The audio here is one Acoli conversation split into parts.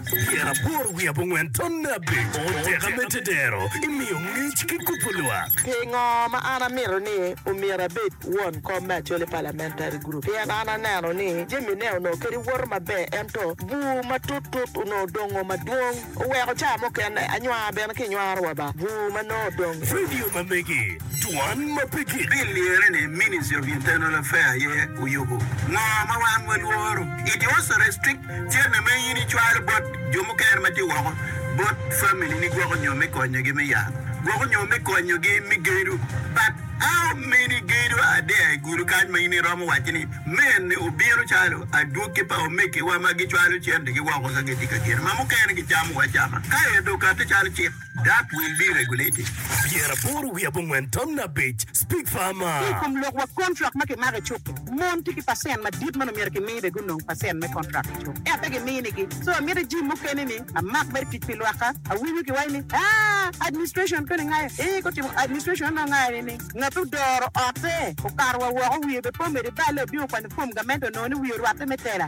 Tyen aboro wiye abongwen tonne abico teka me tedero imiyo ngec ki kubo lwak. Pingo ma an amito ni omyero abed won kom me Acholi Parliamentary Group? Pien an aneno ni jamine onongo kadi woto maber ento bur matut tut onongo dongo madwong oweko ca mukene anywar bene kinywaro wa ba bur ma nongo odongo. Radio ma megi. Juwan ma pe gik pi lyere ni Ministry of Internal Affair aye oyubu ngo ma wan wa lworo. It also restrict cene ma in icwalo bot jo mukene ma tye woko bot family ni gwoko nyo me konyo gi me yat, gwoko nyo me konyo gi me gedo but how many gedo are there i gulu kany ma in iromo waco ni men ni obino calo adwogi pa omege wa ma gicwalo cente gi woko ka gitye ka gedo ma mukene gicamo wa cama ka ento okate calo cik. Dak wil me regulate pyera aboro wiye abongwen tamna abic, Speak Farmer. Ki i kom lok wa kontrak ma kimako i cuk-ki, mon tye ki pacent madit ma nongo myero kimi bene gunong pacent me kontrak i cuk, ento pe giminigi. So amito ijim mukene ni amak mere tic pi lwakka. Awinyo kiwaco ni, Aah, administration koni ngayo? Ee, gutimo administration anongo ngayo ni ni ngat ma odoro otte okato wa woko wiye bene pe omedde balle obino kwanyo fom gamente onongo ni wiye orwatte me tela.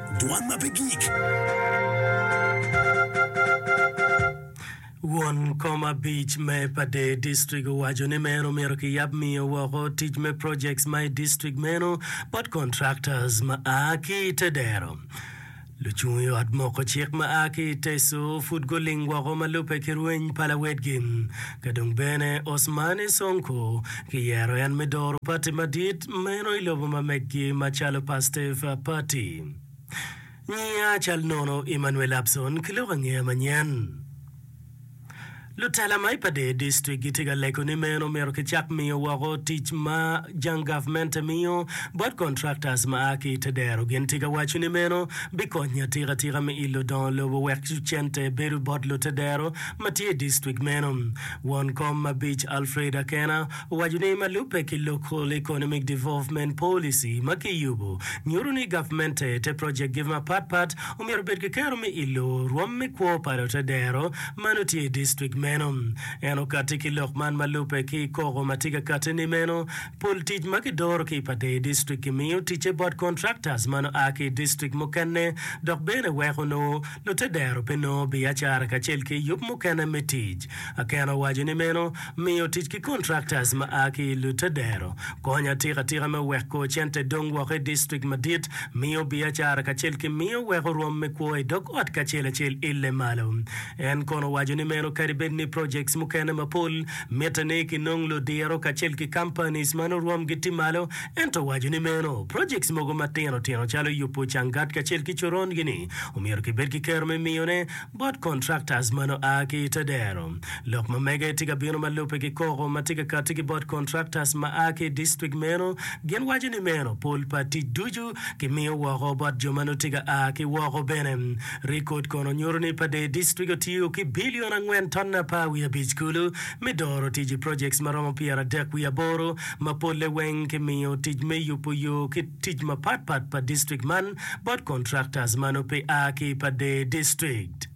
Dwan ma pe gik. Won kom abic me pa der district owaco ni meno omyero kiyab miyo woko tic me projects ma i district meno bot contractors ma a ki i te dero. Lucung i ot moko cik ma a ki i Teso pud guling woko ma lubbe ki rweny pa lawedgi. Ka dong bene Osmane Sonko Kiyero en me doro pati madit meno i lobo ma meggi macalo Pastef Pati. Nyinga cal nono Emmanuel Abson ki lok angeya manyen. Lutela ma i Padee District gitye ka lego ni meno myero kicak miyo woko tic ma jang gavmente miyo bot contractors ma a ki i te dero. Gin tye ka waco ni meno bikonyo atika tika me ilo dongo lobo wek cente bedo bot lute dero ma tye i district meno. Won kom mabic Alfred Akena owaco ni ma lubbe ki Local Economic Development Policy ma kiyubo nyuto ni gavmente te project gi mapat pat omyero obed ki kero me ilo rwom me kwo pa lote dero ma nongo tye i district meno. En okati ki lok man ma lubbe ki koko ma tye ka kati ni meno pol tic ma ki doro ki i pa dee district ki miyo ticce bot contractors ma nongo aa ki i district mukene dok bene weko nongo Lute dero pe nongo biacara kacel ki yub mukene me tic. Akena owaco ni meno miyo tic ki kontraktas ma a ki i lute dero konyo atika atika me weko cente dong woko i distrik madit, miyo biacara kacel ki miyo weko rwom me kwo i dog ot kacel acel ille malo. En kono owaco ni meno kadi bed ni projects mukene mapol mitte ni kinong ludiro kacel ki companies ma nurwomgi tye malo, Ento waco ni meno, projects mogo matino tino calo yubo cangat kacel ki coron gi ni omyero ki bed ki kero me miyo ne bot contractors mano a ki ite dero. Lok ma mege tye ka bino ma lube ki koko ma tye ka kati ki bot contractors ma a ki i district meno, gin waco ni meno pol pa tic ducu ki miyo woko bot jo ma nongo tye ka a ki woko bene. Record kono nyuto ni pa dee district otiyo ki billion angwen ton apar wiye abic kulu me doro tic i projects ma romo pyera dek wiye aboro ma polle weng kimiyo tic me yubo yo ki tic mapat pat pa district man bot contractors ma nongo pe a ki pa Dee District.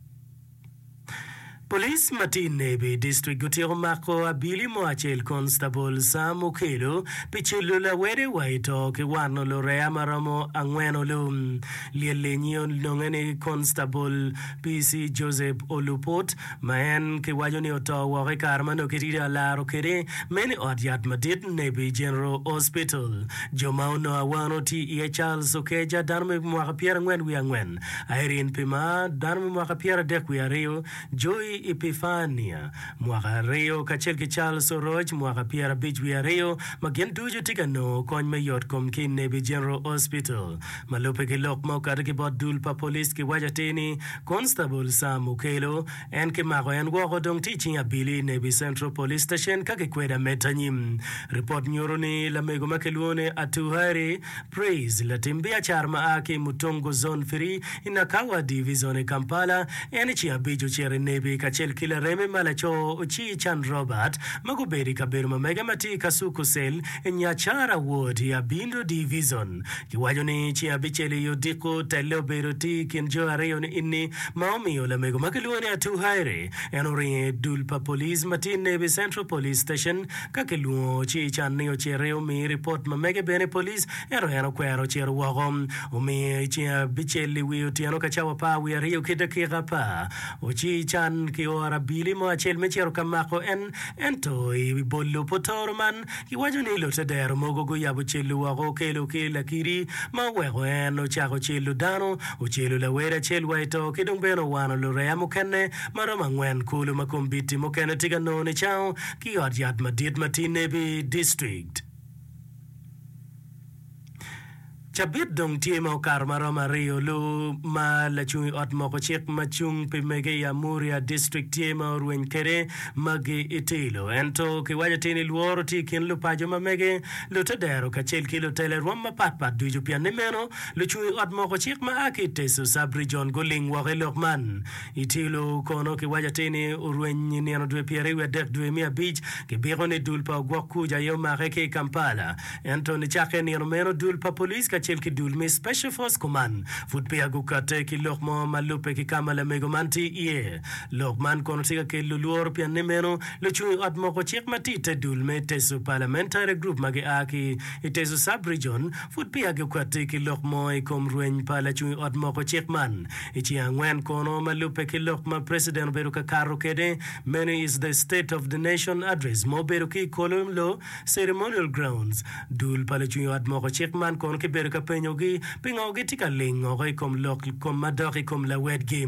Police ma tye i Nebi District gutyeko mako abili mo acel Constable Sam Okello pi cilo lawede wa i to ki wano lureya ma romo angwen olum. Lyel-li nyi ononge ni Constable PC Joseph Oluput ma en kiwaco ni oto woko i kare ma nongo kirido alaro kwede me ni ot yat madit Nabi General Hospital. Jo ma onongo awano tye iye Charles Okeja, dano me mwaka pyera angwen wiye angwen, Irene Pimar, dano me mwaka pyera adek wiye aryo, Joy Epifania, mwaka aryo, kacel ki Charles Oroc, mwaka pyera abic wiye aryo, ma gin ducu tye ka nongo kony me yotkom ki i Nabi General Hospital. Ma lubbe ki lok ma okato ki bot dul pa police kiwaco atir ni Constable Sam Okello, En kimako en woko dong tye i cing abili Nebbi Central Police Station ka kikwedo ameta nyim. Ripot nyuto ni lamego ma kilwongo ni Atuhaire Praise, latim biacara ma a ki i Mutongo Zone Three i Nakawa Divizon i Kampala, en i cing abic ocito i Nebbi kacel ki lareme ma laco Ocii Can Robert ma gubedo i kabedo ma mege ma tye i Kasuku Cell i Nyacara Ward i Abindo Divizon. Giwaco ni ci abicel i odiko telle obedo tye i kin jo aryo ni enni ma omiyo lamego ma kilwongo ni Atuu Haire en oringo i dul pa police ma tye Nebi Central Police Station ka kilwongo ci can ni ociti omi ripot ma mege bene i police ento en okwero ocito woko omiyo i ceng abicel i wi otyeno ka cawa apar wiye aryo ki dakika apar oci can kioro abili mo acel me cito ka mako en ento i bolo pa otoro man Giwaco ni lutedero mogo guyabo celu woko okelo ki lakidi ma oweko en ocako celo dano, ocelo lawere acel wa i to ki dong bene owano lureya mukene ma romo angwen kulu ma kombiti mukene tye ka nongo nicango ki i ot yat madit ma tye i Nebbi District. Cabit dong tye ma okato ma romo aryo lu ma lacung i ot moko cik ma cung pi mege i Amuria District tye ma orweny kwede magi i tilo. Ento kiwaco ti ni lworo tye i kin lupaco ma mege, lutedero kacel ki lutele rwom mapat pat ducu. Pien ni meno, lucung i ot moko cik ma a ki i Teso Sub-Region guling woko i lok man. I tilo kono kiwaco ti ni orweny i nino dwe pyeraryo wiadek dwe me abic, kibiko ni dul pa ogwok kuc aye omake ki i Kampala. Ento nicakke i nino meno, dul pa police kacel ki dul me Special Force Command pud peya gukatte ki lok mo ma lubbe ki ka ma lamego man tye iye. Lok man kono tye ka kelo lworo pienni meno lucung i ot moko cik ma tye i te dul me Teso Parliamentary Group ma gia ki i Teso Sub-Region pud peya gukatte ki lok mo i kom rweny pa lacung i ot moko cik man i ceng angwen kono ma lubbe ki lok ma President obedo ka kato kwede. Meno is the State of the Nation Address ma obedo ki i kolo Ceremonial Grounds. Dul pa lucung ot moko cik man kono kibedo ka penyogi pingo gitye ka lingoko i kom lok kom madok i kom lawedgi.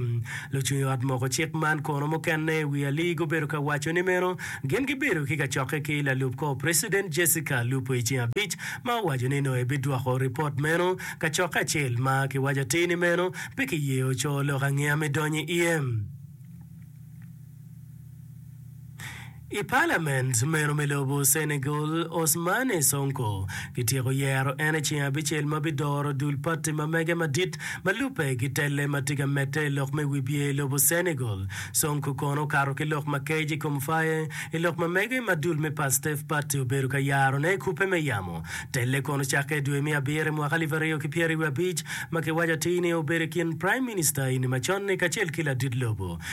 Lucung ot moko cik man kono mukene i wi ali gubedo ka waco ni meno gin gibedo ki kacokke ki lalub kor Precedent Jessica Lupo i ceng abic ma owaco ni nongo ebidwoko ripot meno kacokke acel ma kiwaco atir ni meno pe kiye oco lok angeya me donyo i iye. I palament meno me lobo Senegal, Ousmane Sonko kityeko yero en i ceng abicel ma bidoro dul pati ma mege madit ma lubbe ki telle ma tye ka medde i lok me wibye i lobo Senegal. Sonko kono okato ki lok ma kec i kom Faye i lok ma mege ma dul me Pastef Party obedo ka yarone i kubbe me yamo telle kono cakke i dwe me abiro i mwaka alip aryo ki pyeraryo abic ma kiwaco atir ni obedo i kin Prime Minister ini macon-ni kacel ki ladit lobo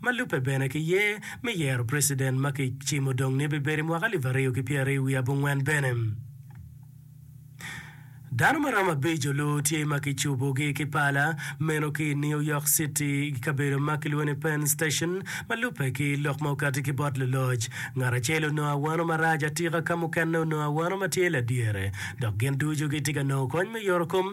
ma lubbe bene ki ye me yero preciden ma ki cimo dong ni bibedo i mwaka alip aryo ki pyera aryo wiye abongwen bene. Dano ma romo abic olu tye ma ki cubu gi ki pala meno ki i New York City i kabedo ma ki lwongo ni Penn Station ma lubbe ki lok ma okati ki bot luloc. Ngat acel onongo awano marac atika ka mukene onongo awano ma tye ladyere dok gin ducu gitye ka nongo kony me yoro kom